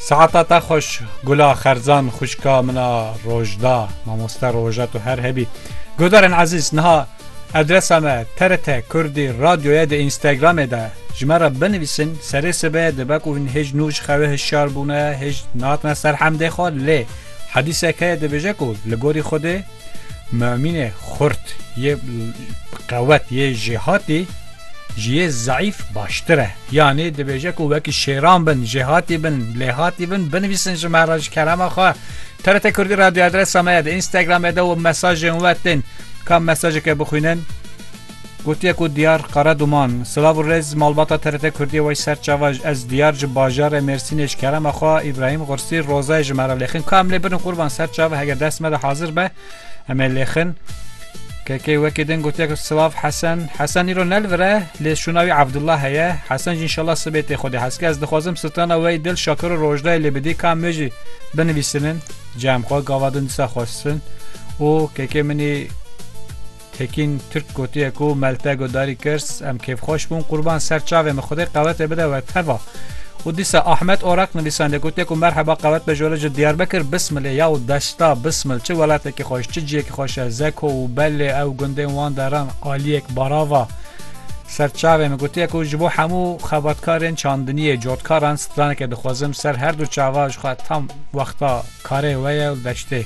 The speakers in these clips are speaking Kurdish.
Saeta te xweş Gula Xerzan xwişka min a rojda mamoste roja tu her hebî. Guhdarên ezîz niha adresa me TRT Kurdî radyoye di Instagramê de ji me re binivîsin serê sibe dibe ku hûn hêj nû ji xewe hişyar bûne hêj nahatine ser hemdê xwe lê hedîsek heye dibêje ku li gorî Xwedê Mumînê xurt yê bi qewet yê jêhatî ji yê zeîf baştir e. Yanî dibêje ku wekî şêran bin, jêhatî bin, lêhatî bin, binivîsin ji me re ji kerema xwe. TRT Kurdî Radyo adresa me ye di Instagramê de û mesajên we tên. Ka mesajeke bixwînin? Gotiye ku Diyar Karaduman, silav û rêz malbata TRT Kurdiyê wey ser çava ji ez Diyar ji bajarê Mêrsînê ji kerema xwe Îbrahîm Xursi Rozayê ji me re lêxin ka em lê birin qurban ser çava heger dest me de hazir be em ê lêxin KK wekî din gotiye ku silav Hesen Hesen îro ne li vir e lê şûna wî Evdullah heye Hesen jî înşallah sibê tê xwedê heskê ez dixwazim sitana wey dil şakir û rojdayê lê bidî ka em wê jî binivîsinin cem xwe gava din disa xwestin û KK minî Tekîn Tirk gotiye ku Melte Godarî Kirs em kêfxweş bûn qurban ser çavê min xwedê qewetê bide we teva. û dîsa Ahmet Orak nivîsandê gotiye ku merheba qewet be ji were ji Diyarbekir Bismilê ya û desta Bismil çi welatekî xweş çi ciyekî xweş e Zeko û Bellê ew gundên wan deran aliyek barava ser çavê min gotiye ku ji bo hemû xebatkarên çandiniyê cotkaran straneke dixwezim ser her du çava jixwe tam wexta karê we ye û deştê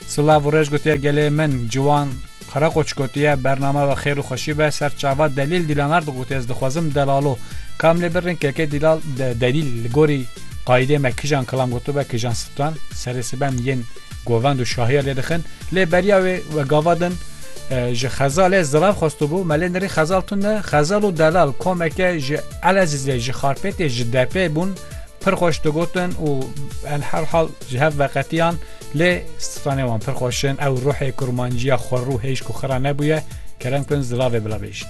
Silav û rej gotiye gelê min Ciwan Karakoç gotiye bername ve xêr û xweşî be ser çava Delîl Dîlanar digot ez dixwazim Delalo kam lê birin keke Dîlal Delîl li gorî qayîdê me kijan kilam gotibe kijan sitan serê siben yên govend û şahiya lê dixin lê beriya wê we gava din ji xezalê zilav xwestibû me lê nirî xezal tune xezal û delal komeke ji Elezîzê ji Xarpêtê ji Depê bûn pir xweş digotin û enherhal ji hev veqetiyan Lê stranê wan pir xweş in, ew ruhê kurmanciya xwerû hêj ku xira nebûye, kerem kin zilavê bila bêjin.